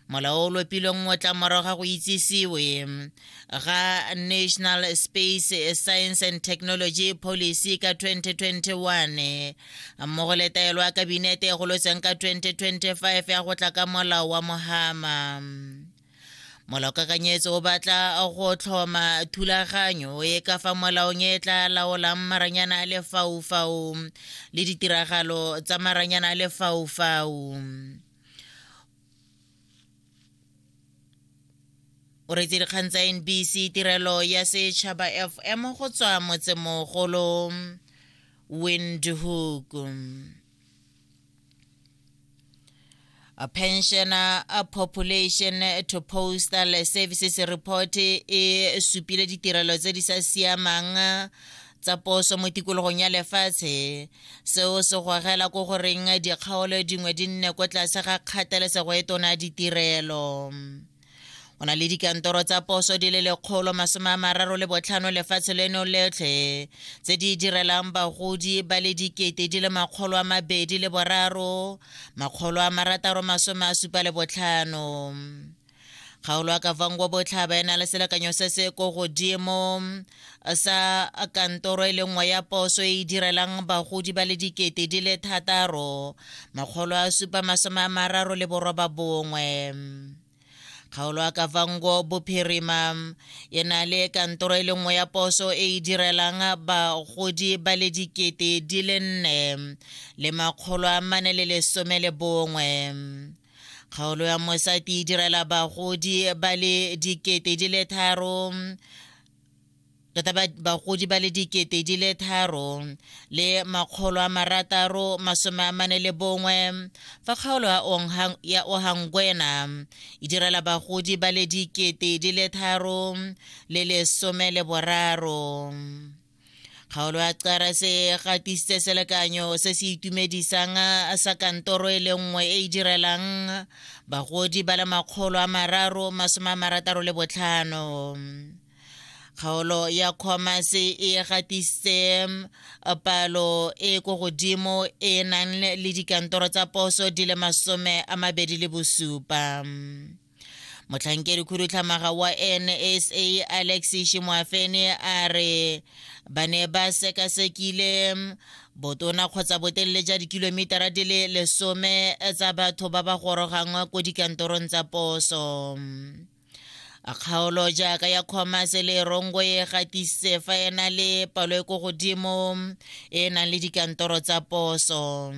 molao o lopilweng mo tla morago ga go itsisiwe ga national space science and technology policy ka 2021 mmogo le taelo ya kabinete e golotseng ka 2025 ya go tla ka molao wa mohama molaokakanyetso o batla go tlhoma thulaganyo e ka fa molaong e tla laolang maranyana a lefaufau le ditiragalo tsa maranyana a lefaufau o retse dikgang tsa nbc tirelo ya setšhaba fm go tswa motsemogolo windhoek a pensioner a population to postal services report e supile ditirelo tse di sa siamang tsa poso mo tikologong ya lefatshe seo se gogela ko goreng dikgaolo dingwe di nne ko tlase ga kgathalesego e tona ya ditirelo o na le dikantoro tsa poso di le lekgolo masome a mararo le botlhano lefatshe leno letlhe tse di direlang bagodi ba le dikete di le makgolo a mabedi le boraro makgolo a marataro masome a supa le botlhano kgaolo ya kavangwa botlhaba e na le selekanyo se se ko godimo sa kantoro e le nngwe ya poso e e direlang bagodi ba le dikete di le thataro makgolo a supa masome a mararo le boroba bongwe kgaolo ya kavango bophirima e na le kantoro e le nngwe ya poso e e direlang bagodi ba le dikete di le nne le makgolo a mane le lesome le bongwe kgaolo ya mosati e direla bagodi ba le dikete di le tharo tota bagodi ba le dikete di le tharo le makgolo a marataro masome a mane le bongwe fa kgaolo ya ohangwena e direla bagodi ba le dikete di le tharo le lesome le boraro kgaolo ya cara se gatisitse selekanyo se se itumedisang sa kantoro e le nngwe e e direlang bagodi ba le makgolo a mararo masome a marataro le botlhano kgaolo ya commerce e gatisitse palo e ko godimo e nang le dikantoro tsa poso di le masome a mabedi le bosupa motlhankedi khudutlhamaga wa nsa alex shimoafene a re ba ne ba sekasekile botona kgotsa botelele ja dikilomitara di le lesome tsa batho ba ba gorogang ko dikantorong tsa poso kgaolo jaaka ya commerce e le rongo e gatisitse fa e na le palo e ko godimo e e nang le dikantoro tsa poso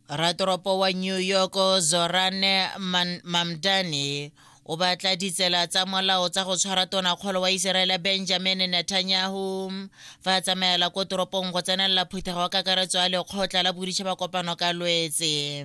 Ratoropo wa New York Zorane Man Mamdani o batla ditsela tsa molao tsa go tshwara tonakgolo wa Iseraele Benjamin Netanyahu fa a tsamaela ko toropong go tsenelela phuthego kakaretso ya lekgotla la boditšhaba kopano ka lwetse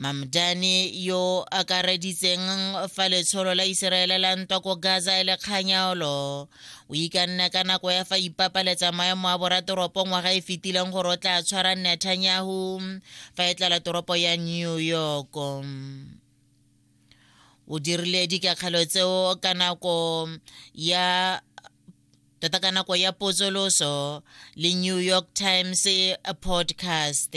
mamdani yo akareditseng fa letsholo la iseraele la ntwa ko gaza e le kganyaolo o ikanne ka nako ya fa ipapaletsa maemo a boratoropo ngwaga e fetileng gore o tla tshwara netanyahu fa e tlala toropo ya new york o dirile dikakgelo tseo ka nako ya tota ka nako ya potsoloso le new york times podcast